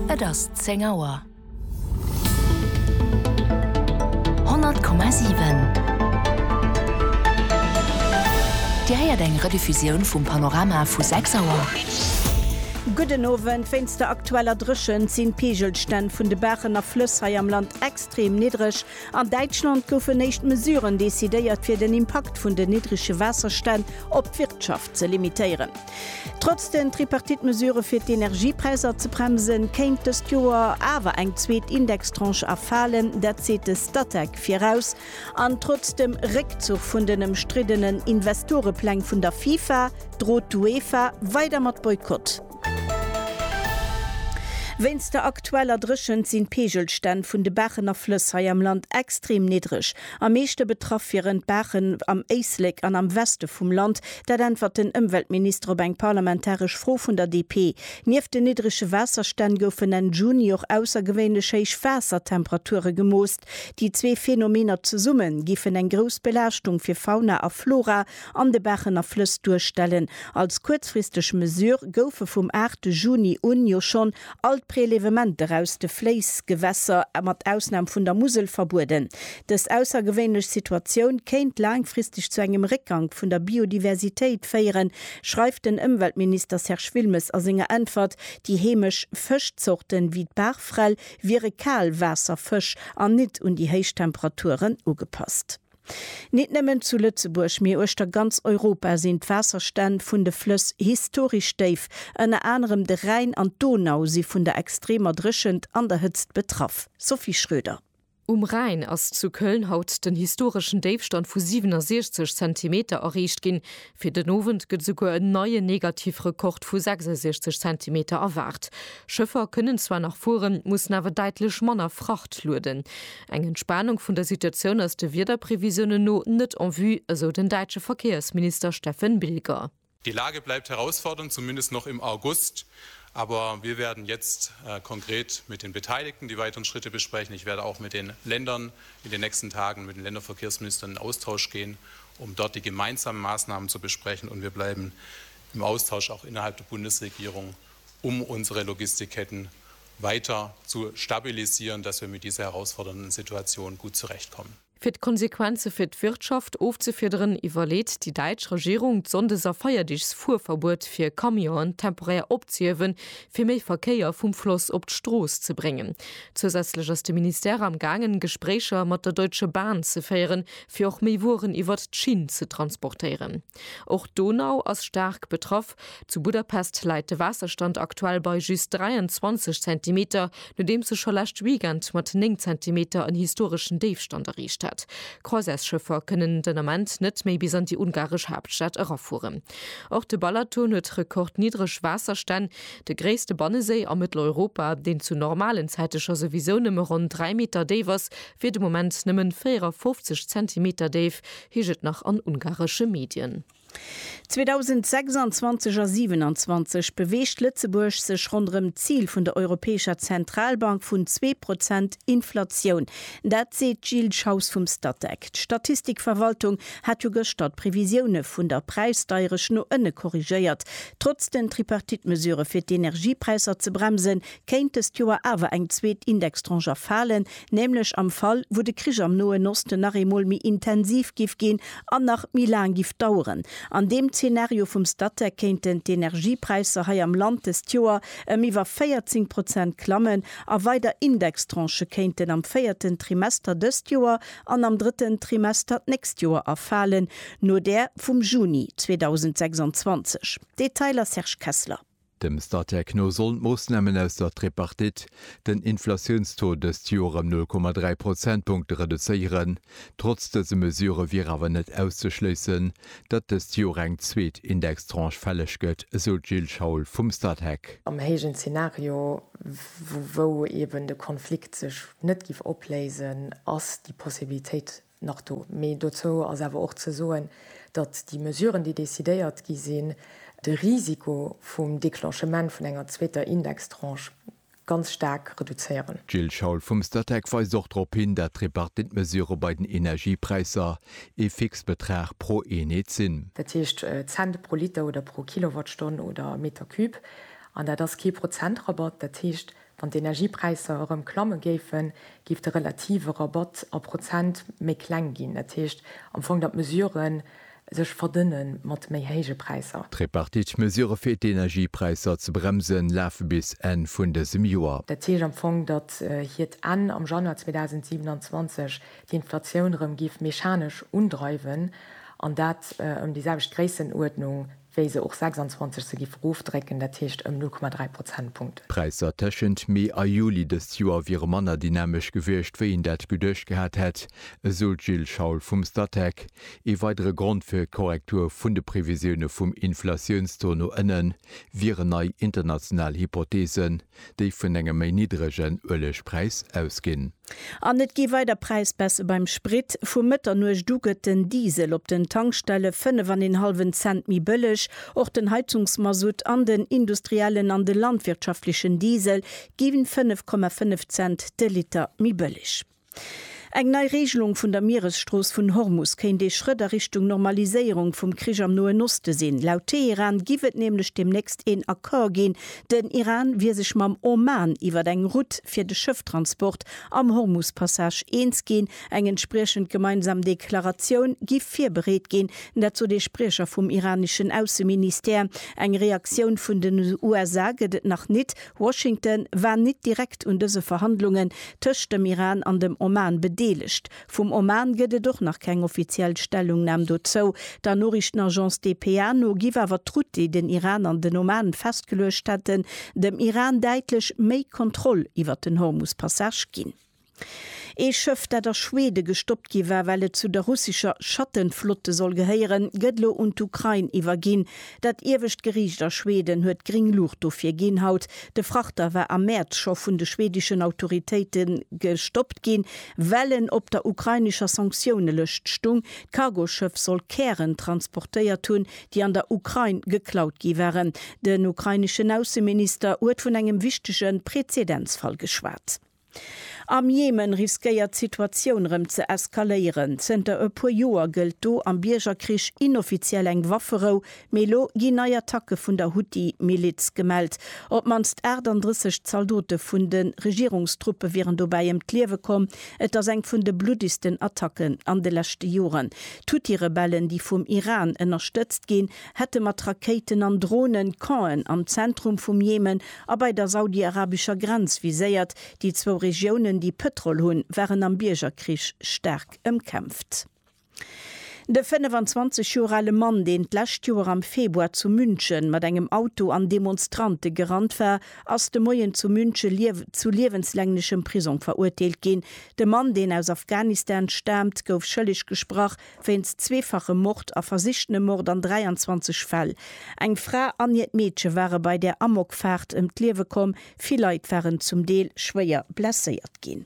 Et ass zéng Auer. 100,7 Dir héiert eng Rediffusioun vum Panorama vu 6 Auer. Gudden Owend. Wéinst der aktueller Dréchent sinn d'Peegelstänn vun de Baachen a Flëss hei am Land extrem niddreg. An Däitschland goufen éischt Mesuren decidéiert, fir den Impakt vun den niddrege Waasserstänn op d'Wirtschaft ze limitéieren. Trotz den Tripartite-Mesurë fir d'Energiepräisser ze bremsen, kéint dëst Joer awer eng zweet Indextranche erfalen. Dat seet de Statec viraus. An trotz dem Réckzuch vun den ëmstriddenen Investorepläng vun der FIFA, drot d'UEFA weider mat Boykott. Wéinst der aktueller Dréchent sinn d'Peegelstänn vun de Baachen a Flëss hei am Land extrem niddreg. Am meeschte betraff wieren d'Baachen am Éislek an am Weste vum Land. Dat äntwert den Ëmweltminister op eng parlamentaresch Fro vun der DP. Nieft den niddrege Waasserstänn goufen Enn Juni och aussergewéinlech héich Waassertemperature gemooss. Déi zwee Phänomener zesumme giffen eng grouss Belaaschtung fir Fauna a Flora an de Bächen a Flëss duerstellen. Als kuerzfristeg Mesure goufe vum 8 Juni un jo schonn all d'Prelevementer aus de Fléissgewässer, mat Ausnam vun der Musel, verbueden. Dës aussergewéinlech Situatioun kéint laangfristeg zu engem Réckgank vun der Biodiversitéit féieren, schreift den Ëmweltminister Serge Wilmes a senger Äntwert. Déi heemesch Fëschzorten, wéi d'Barfrell, wiere Kaalwaasserfësch an nit un déi héich Temperaturen ugepasst. Nit nëmmen zu Lëtzebuerg, mee uechter ganz Europa sinn d'Waasserstänn vun de Flëss historesch déif. Ënner anerem de Rhäin an d'Donau si vun der extremer Dréchent an der Hëtzt betraff. Sophie Schröder. Um Rhäin ass zu Köln haut den historeschen Déifstand vu 67 Zentimeter erreecht ginn. Fir den Owend gëtt esouguer en neien Negativrekord vu 66 Zentimeter erwaart. Schëffer kënnen zwar nach fueren, mussen awer däitlech manner Fracht lueden. Eng Entspanung vun der Situatioun ass de Wiederprevisiounen no net en vue, esou den däitsche Verkéiersminister Steffen Bilger. Die Lage bleibt herausfordernd, zumindest noch im August, aber wir werden jetzt konkret mit den Beteiligten die weiteren Schritte besprechen. Ich werde auch mit den Ländern in den nächsten Tagen, mit den Länderverkehrsministern in Austausch gehen, um dort die gemeinsame Maßnahmen zu besprechen und wir bleiben im Austausch auch innerhalb der Bundesregierung, um unsere Logistikketten weiter zu stabilisieren, dass wir mit dieser herausfordernden Situation gut zurechtkommen. Fir d'Konsequenze fir d'Wirtschaft ofzefiederen, iwwerleet déi däitsch Regierung, d'Sonndes a Feierdeegsfuerverbuet fir Camionen temporär opzehiewen, fir méi Verkéier vum Floss op d'Strooss ze bréngen. Zousätzlech ass de Ministère am gaangen, Gespréicher mat der Deutsche Bahn ze féieren, fir och méi Wueren iwwert d'Schinn ze transportéieren. Och d'Donau ass staark betraff. Zu Budapest läit de Waasserstand aktuell bei just 23 Zentimeter, nodeems e scho lescht Weekend mat 9 Zentimeter en historeschen Déifstand erreecht hat. Croisièresschëffer kënnen den Ament net méi bis an déi ungaresch Haaptstad erafueren. Och de Balaton huet rekordniddreg Waasserstänn, de gréisste Banneséi a Mëtteleuropa, deen zu normalen Zäite scho souwisou nëmme ronn 3 Meter déif ass, wier de Moment nëmmen 54 Zentimeter déif, heescht et nach an ungaresche Medien. 2026 a 27 beweegt Lëtzebuerg sech ronderëm d'Zil vun der Europäescher Zentralbank vun zwee Prozent Inflatioun. Dat seet d'Jill Schaus vum Statec. D'Statistikverwaltung hat jo gëschter d'Previsioune vun der Präisdeierecht no ënne korrigéiert. Trotz den Tripartite-Mesurë fir d'Energiepräisser ze bremsen, kéint dëst Joer awer eng zweet Indextranche erfalen. nämlech am Fall wou de Krich am Noen Osten nach eemol méi intensiv giff ginn an nach méi laang giff daueren. An deem Zeenario vum Statec kéinten d'Energiepräisser hei am Land dëst Joer ëm iwwer 14 Prozent klammen a weider Indextranchë kéinten am véierten Trimester dëst Joer an am drëtten Trimester d'nächst Joer erfalen, no där vum Juni 2026. Detailer Serge Kessler. Dem Statec no sollen d'Moossnamen aus der Tripartite den Inflatiounstaux dëst Joer ëm 0,3 Prozentpunkte reduzéieren. Trotz dëse Mesure wier awer net auszeschléissen, datt dëst Joer eng zweet Indextranche fälleg gëtt, esou d'Jill Schaul vum Statec. Am héijen Zenario, wou eben de Konflikt sech net giff opléisen, ass déi Possibilitéit nach do. Mee dozou ass awer och ze soen, datt déi Mesuren, déi decidéiert gi sinn, de Risiko vum Declenchement vun enger zweeter Indextranche ganz staark reduzéieren. D'Jill Schaul vum Statec weist och drop hin, datt d'Tripartite-Mesurë bei den Energiepräisser ee Fixbetrag pro Eenheet sinn. Dat heescht Cent pro Liter oder pro Kilowattstonn oder Meter Cube. An dat ass kee Prozentrabatt, dat heescht Wann d'Energiepräisser erëm klamme géifen, géif de relative Rabatt a Prozent méi kleng ginn. Dat heescht am Fong, datt d'Mesurë sech verdënne mat méi héije Präisser. D'Tripartite-Mesurë fir d'Energiepräisser ze bremsen, lafe bis Enn vun dësem Joer. Dat heescht am Fong, datt hiert Enn am Januar 2027 d'Inflatioun erëm géif mechanesch undreiwen, an dat ëm déi selwecht Gréissenuerdnung wéi se och 26 se giff erofdrécken, dat heescht ëm 0,3 Prozentpunkten. D'Präisser tëschent Mee a Juli dëst Joer wiere manner dynamesch gewiescht, wéi een dat geduecht gehat hätt, esou d'Jill Schaul vum Statec. Ee weidere Grond fir d'Korrektur vun de Previsioune vum Inflatiounstaux no ënnen, wieren nei international Hypotheesen. déi vun engem méi niddregen Uelegpräis ausginn. An et gi weider Präisbaisse beim Sprit. Vu Mëtternuecht u gëtt den Diesel op den Tankstelle fënnef an een hallwen Cent méi bëlleg. Och den Heizungsmasutt an den industriellen an de landwirtschaftlechen Diesel gi fënnef Komma fënnef Cent de Liter méi bëlleg. Eng nei Reegelung vun der Mieresstrooss vun Hormus kéint ee Schrëtt a Richtung Normaliséierung vum Krich am Noen Oste sinn. Laut Teheran giff et nämlech deemnächst een Accord ginn. Den Iran wier sech mam Oman iwwer eng Route fir de Schëfftransport am Hormus-Passage eens ginn. Eng entspriechend gemeinsam Deklaratioun giff virbereet ginn. Dat sot ee Spriecher vum iraneschen Ausseministère. Eng Reaktioun vun den USA gëtt et nach nit. Washington war nit direkt un dëse Verhandlungen tëscht dem Iran an dem Oman bedeelegt. Vum Oman gëtt et och nach keng offiziell Stellungnam dozou. Der Noriichtenagence dpa no giff awer d'Route, déi den Iran an den Oman festgeluecht hätten, dem Iran däitlech méi Kontroll iwwert den Hormus-Passage ginn. Ee Schëff, dat a Schwede gestoppt gi war, well et zu der russescher Schattenflotte soll gehéieren, gëtt elo un d'Ukrain iwwerginn. Dat iewescht Geriicht a Schweden huet gréng Luucht dofir ginn haut. De Frachter war am Mäerz scho vun de schwedeschen Autoritéite gestoppt ginn, well en op der ukrainescher Sanktiounelëscht stung. D'Cargoschëff soll Kären transportéiert hunn, déi an der Ukrain geklaut gi waren. Den ukraineschen Ausseminister huet vun engem wichtege Präzedenzfall geschwat. Am Jemen riskéiert d'Situatioun rëm ze eskaléieren. Zënter e puer Joer gëllt do am Biergerkrich inoffiziell eng Wafferou, mee elo ginn nei Attacke vun der Huthi-Miliz gemellt. Op d'mannst 38 Zaldote vun de Regierungstruppe wieren dobäi ëm d'Liewe komm. Et ass eng vun de bluddigsten Attacken an de leschte Joren. D'Huthi-Rebellen, déi vum Iran ënnerstëtzt ginn, hätte mat Rakéiten an Dronen d'Campen am Zentrum vum Jemen a bei der saudiarabescher Grenz viséiert. Déi zwou Regiounen, déi Pëtrol hunn, waren am Biergerkrich staark ëmkämpft. De 25 Joer ale Mann, deen d'lescht Joer am Februar zu München mat engem Auto an Demonstrante gerannt war, ass de Moien zu München zu liewenslänglechem Prisong verurteelt ginn. De Mann, deen aus Afghanistan staamt, gouf schëlleg gesprach, wéinst zweefachem Mord a versichtene Mord an 23 Fäll. Eng Fra an hiert Meedche ware bei där Amokfaart ëm d'Liewe komm, vill Leit waren zum Deel schwéier blesséiert ginn.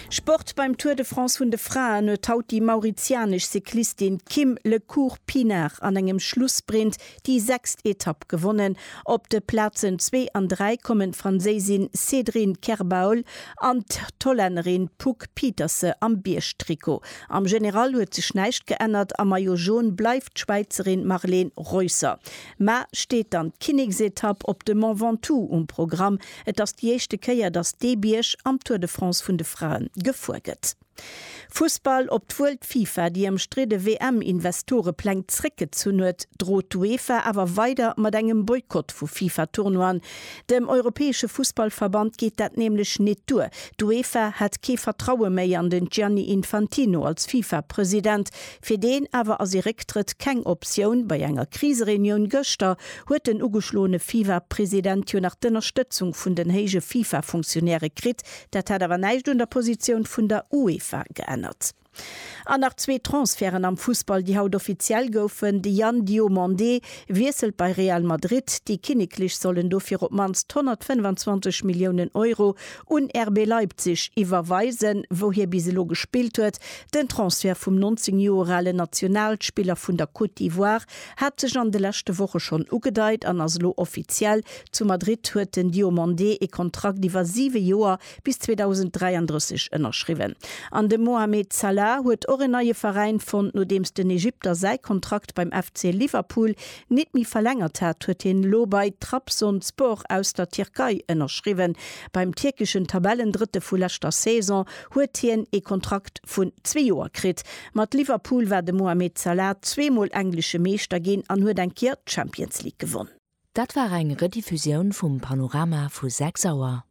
Sport, Beim Tour de France vun de Fraen huet haut déi mauritianesch Cyclistin Kim Le Cours Pinard an engem Schlussprint déi sechst Etapp gewonnen. Op de Plazen zwee an dräi kommen d'Franséisin Cédrine Kerbaul an d'Hollännerin Poek Pieterse am Biergtrikot. Am General huet sech näischt geännert, am Maillot Jaune bleift d'Schwäizerin Marleen Reusser. Mar steet dann d'Kinneksetapp op de Mont Ventoux um Programm. Et ass déi éischte Kéier, datt dee Bierg am Tour de France vun de Frae gefuer gëtt. Fussball, Op d'wuel d'FIFA déi ëmstridde WM-Investorepläng zréckgezunn huet, drot d'UEFA awer weider mat engem Boykott vu FIFA-Tournoien. Dem europäesche Fussballverband geet dat nämlech nit duer. D'UEFA hätt kee Vertraue méi an den Gianni Infantino als FIFA-President. Fir deen awer ass ee Récktrëtt keng Optioun. Bei enger Krisereunioun gëschter huet den ugeschloene FIFA-President jo nach d'Ënnerstëtzung vun den héije FIFA-Funktionäre kritt, Dat hätt awer näischt un der Positioun vun der UEFA geännert. An nach zwee Transferten am Fussball, déi haut offiziell goufen, De Yann Diomandé wiesselt bei Real Madrid, déi Kinneklech sollen dofir op d'mannst 125 Milliounen Euro un RB Leipzig iwwerweisen, wou hie bis elo gespillt huet. Den Transfert vum 19 Joer ale Nationalspiller vun der Côte d'Ivoire Hat sech an de leschte Woche schonn ugedeit an ass elo offiziell, Zu Madrid huet den Diomandé ee Kontrakt iwwer siwe Joer bis 2033 ënnerschriwwen. An de Mohamed Salah huet och en neie Veräin fonnt. Nodeems den Ägypter säi Kontrakt beim FC Liverpool nit méi verlängert hat, huet hien elo bei Trabzonspor aus der Tierkei ënnerschriwwen. Beim tierkeschen Tabellendrëtte vu leschter Saison huet hien ee Kontrakt vun zwee Joer kritt. Mat Liverpool war de Mohamed Salah zweemol englesche Meeschter ginn an huet eng Kéier d'Champions League gewonn. Dat war eng Rediffusioun vum Panorama vu 6 Auer.